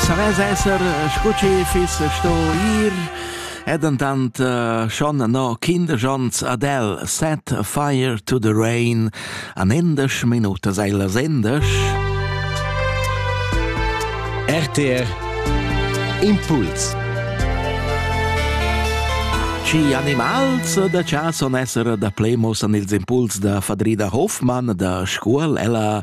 Savess esser scu chi fiss sto ir e dentant uh, schon no Kinderschanz Adele Set Fire to the Rain an endesch Minute sei las endesch. RTR Impuls Ci animals da cha son esser da plemos an ils impuls da Fadrida Hoffmann da Scuol ella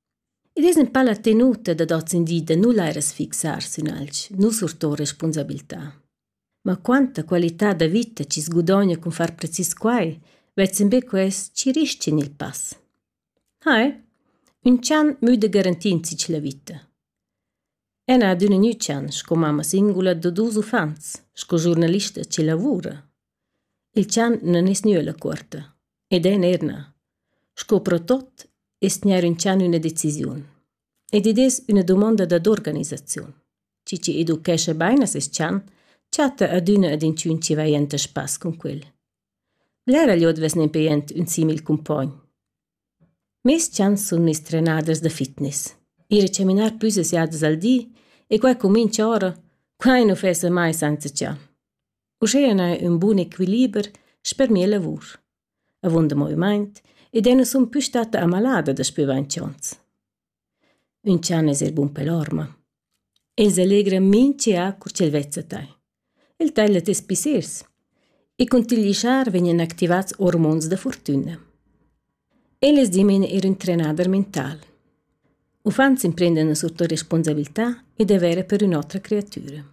Id es ün pa la tenuta dad hoz in di da nu laire sfixar sün alch, nu surtour respunsabiltà. Ma quanta qualità da vita chi's gudogna cun far precis quai, vezzen be quels chi rischin il pass. Hai, ün chan müda garantir insich la vita. El n'ha adüna gnü chan sco mamma singula da duos uffants, sco giurnalista chi lavura. Il tschanten es gnü illa cuorta ed el neir na. Sco pro tuot es gnir intschanà üna decisiun. Ed id es üna dumonda dad organisaziun. Chi chi educhescha bain a seis tschant, chatta adüna ad inchün chi vaja enta spass cun quel. Blera glieud vess nempe jent ün simil cumpogn. Meis tschants sun miss trenaders da fitness. Ir a chaminar plüs as jadas al di e quai cumincha ora, quai nu fessa mai senza tschant. Uschea n'ha ün bun equiliber sper mia lavur. Avunda movimaint ed eu nu sun pü statta amalada daspö vainch ons. Ün chan es eir bun pel orma. El s'allegra mincha cur ch'el vezza tai. El taglia tes pissers e cun til ghischar vegnan activats ormons da furtüna. E lez di mein ir in trenader mental. Uffants emprendan surtut responsabilità e dovere per ün'otra creatura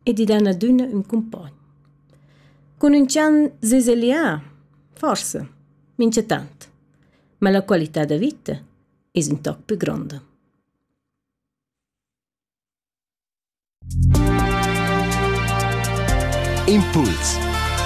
ed i dan adüna ün cumpogn. Cun ün chan zezellià? Forsa, minchatant. Ma la qualità da vita es ün toc plü gronda. Impuls